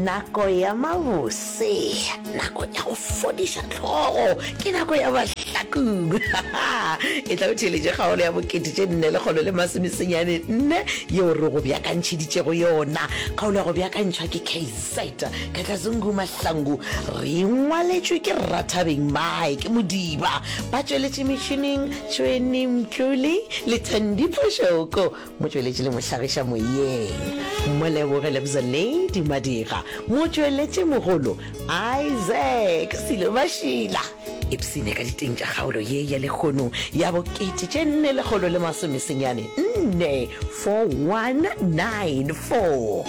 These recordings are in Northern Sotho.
Nako ya mabose, nako ya go fodiša hlogo, ke nako ya bahlakong. E tla o theeletše kgaolo ya bokete tše nne lekgolo le masomesenyane nne yeo re go beakantšheditšego yona. Kgaolo ya go beakantšhwa ke KZ Kakazungu Mahlangu. Re e ngwaletšwe ke Rathabeng Mike Modiba, ba tšweletše metšhineng Tšhweni Mtlole le Thandi Phoshoko. Motšweletši le mohlagiša moyeng Moleboge Lebza Lady Madira, motšweletši mogolo Isaac Silo Mashila. Ipsine ka diteng tša kgaolo ye ya lekgono ya bo kete tše nne lekgolo le masome senyane nne 4194.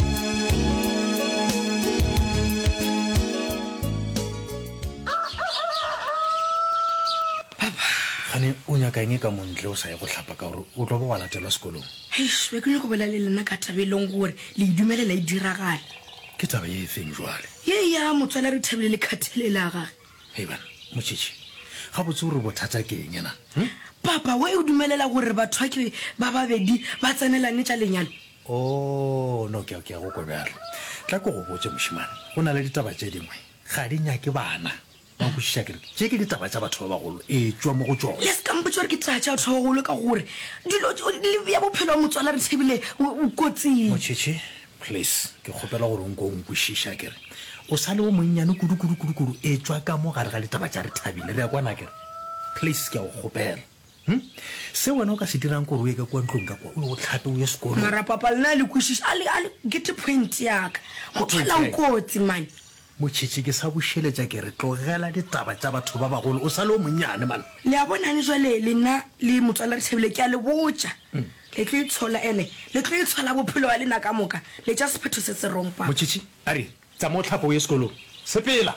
Gane o nyaka eng ka montle o sa ye go hlapa ka gore O tlo bo wa latelwa sekolong. Eish, be ke nyoko bolela le lena ka taba e leng gore le e dumelela e diragale. Ke taba ye efeng jwale? Ye ya motswala Rethabile le Khathalelo ya gage. Hei bana, Motšhitšhi, gabotse o re bothata ke eng na? Hm? Papa, why o dumelela gore batho ba ke ba babedi ba tsenelane tša lenyalo? Oh, no, kea, kea go kwa bjalo. Tla ke go botše, mošemane, go na le ditaba tše dingwe, ga di nyake bana. Wa nkwešiša ke re tše ke ditaba tša batho ba bagolo, etšwa mo go tšona. Le se ka mpotša gore ke taba tša batho ba bagolo ka gore dilo tšo le bea bophelo ba motswala re Thebile kotsing. Motšhetšhe, please, ke kgopela gore o nke o nkwešiša ke re o sa le o monnyane kudu-kudu-kudu-kudu, etšwa ka mo gare ga ditaba tša re Thabile. Re a kwana ke re? Please, ke a go kgopela. Hum. Se wena o ka se dirang ke gore o ye ka kua ntlong ka kua, o ye o hlape, o ye sekolong. Marapapal, na le kwešiša? A le, a le get point ya ka. Motho a la o kotsi mane. Motšhetši, ke sa bušeletša ke re, tlogela ditaba tša batho ba bagolo, o sa le o monnyane man. Le a bonang, bjale lena le Motswala Rethabile, ke a le botša, le tlo itshola, ene le tlo itshola bophelo bja lena ka moka, le tša sephetho se se rong, papa. Motšhetši, a re, Tsamao hlapa o ye sekolong. Sepela!